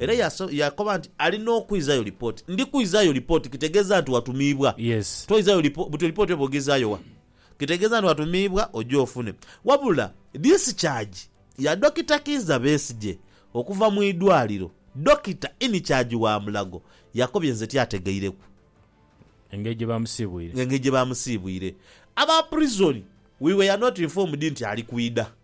Era yaakoba nti, Ali n'okwizaayo lipooti. Ndi kwizaayo lipooti kitegeeza nti watumiibwa. Toizaayo lipooti, buti lipooti oba ogizaayo wa? Kitegeeza nti watumiibwa oje ofune. Wabula discharge ya Dokita Kiiza Besigye okuva mu idwaaliro, Dokita in charge wa Mulago yakobye nze tyategeireku. Engeri gye baamusiibwire. Engeri gye baamusiibwire. Aba prison, we were not informed nti ali kwidha.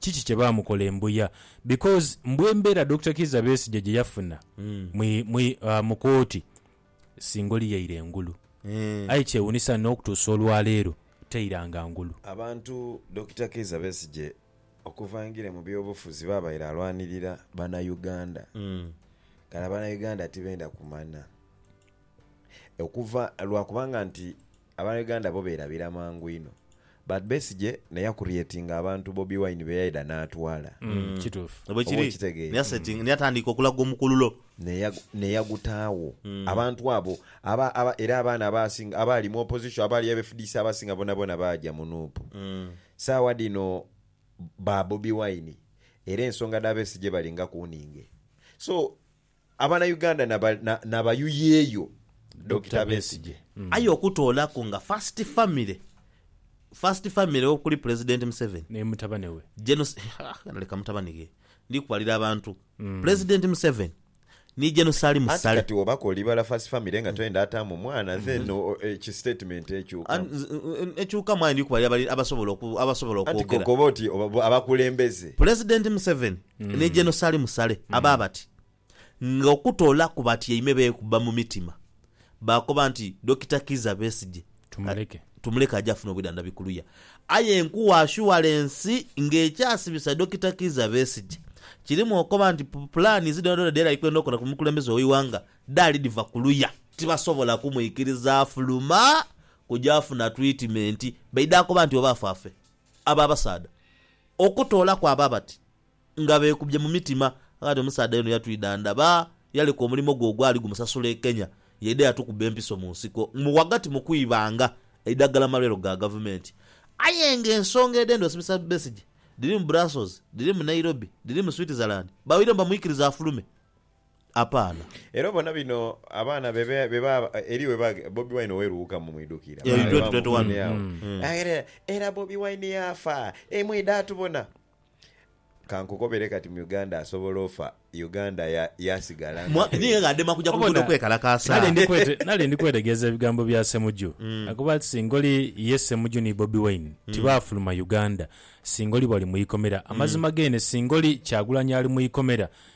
kiki kye baamukola e Mbuya because mbwa embeera Dokita Kiiza Besigye gye yafuna mu mu kooti singa oli yaira engulu aye kyewuunisa n'okutuusa olwaleero tairanga ngulu. Abantu Dokita Kiiza Besigye okuva aingire mu byobufuzi baabaire alwanirira Banauganda. Kale Abanauganda tibenda kumanya okuva lwa kubanga nti Aba Uganda bo beerabira mangu inho but Besigye naye yakurietinga abantu Bobi Wine beyaidha n'atwala. Kituufu. Oba okitegeera. Ni atandiika okulaga omukululo. Neyagutaagho. Abantu abo era abaana abaasinga abaali mu opposition abaali aba fdc abasinga boonaboona baaja mu nup. Saawa dhino ba Bobi Wine era ensonga dha Besigye bali nga kuuninge. So Abana Uganda na bayuyeyo Dokita Besigye. Aye okutoolaku nga first family first family okuli Pulezidenti Museveni, Ne mutabane we. Gen. Ghano leka mutabane ghe ndi kubalira abantu, Pulezidenti Museveni ni Gen. Salim Anti Sale. kati obako olibala first family nga toyenda ataamu mwana then ki statement ekyukamu. Ekyukamu aye ndi kubalira abasobola abasobola Anti okwogera. kokoba oti abakulembeze. Pulezidenti Museveni Ni Geno Sali Musale aba bati, Nga okutoolaku batyaime beekubba mu mitima, baakoba nti Dokita Kizza Besigye tumuleke aje afune obwidhandhabi ku luya. Aye nkuwa ashuwalensi nga ekyasibisa Dokita Kizza Besigye kirimu okoba nti pulaanizi dhoonadhoona dhe yali ali kwenda okola ku mukulembeze w'eighanga dhaali dhiva ku luya. Tibasobola kumwikiriza afuluma kuja funa twitimenti, baidha koba nti oba afa afe. Abo abasaadha okutoolaku abo abati nga beekubye mu mitima. Kaati omusaadha y'ono yatwidha ndaba yaleka omulimo gwe ogwali gumusasula e Kenya yaidha yatukubba empiso mu nsiko mu ghagati mu kwibanga eidhagala mu malwaliro ga Gavumenti. Aye ng'ensonga edhenda osibisa Besigye dhiri mu Brussels, dhiri mu Nairobi, dhiri mu Switzerland, baweiremu bamwikiriza afulume. apaana. Era obona bino abaana be beba eri weba Bobi Wine oweruwukamu mwidhukira Yeah, in baali 2021. bamufunye agho Mm. Mm. Aghera era Bobi Wine yaafa e mwidha atubona. Kankukobere kati mu Uganda asobola ofa Uganda ya yasigala Mwa- nga ninga adema kuja ku luguudo Obona, kwekalakaasa. nali ndi kwete- nali ndi kwetegereza ebigambo bya Ssemuju. Mm. Akuba ati singa oli ye Ssemuju ni Bobi Wine Mm. tibaafuluma Uganda, singa oli bali mu ikomera. Amazima geene singa oli Kyagulanyi ali mu ikomera,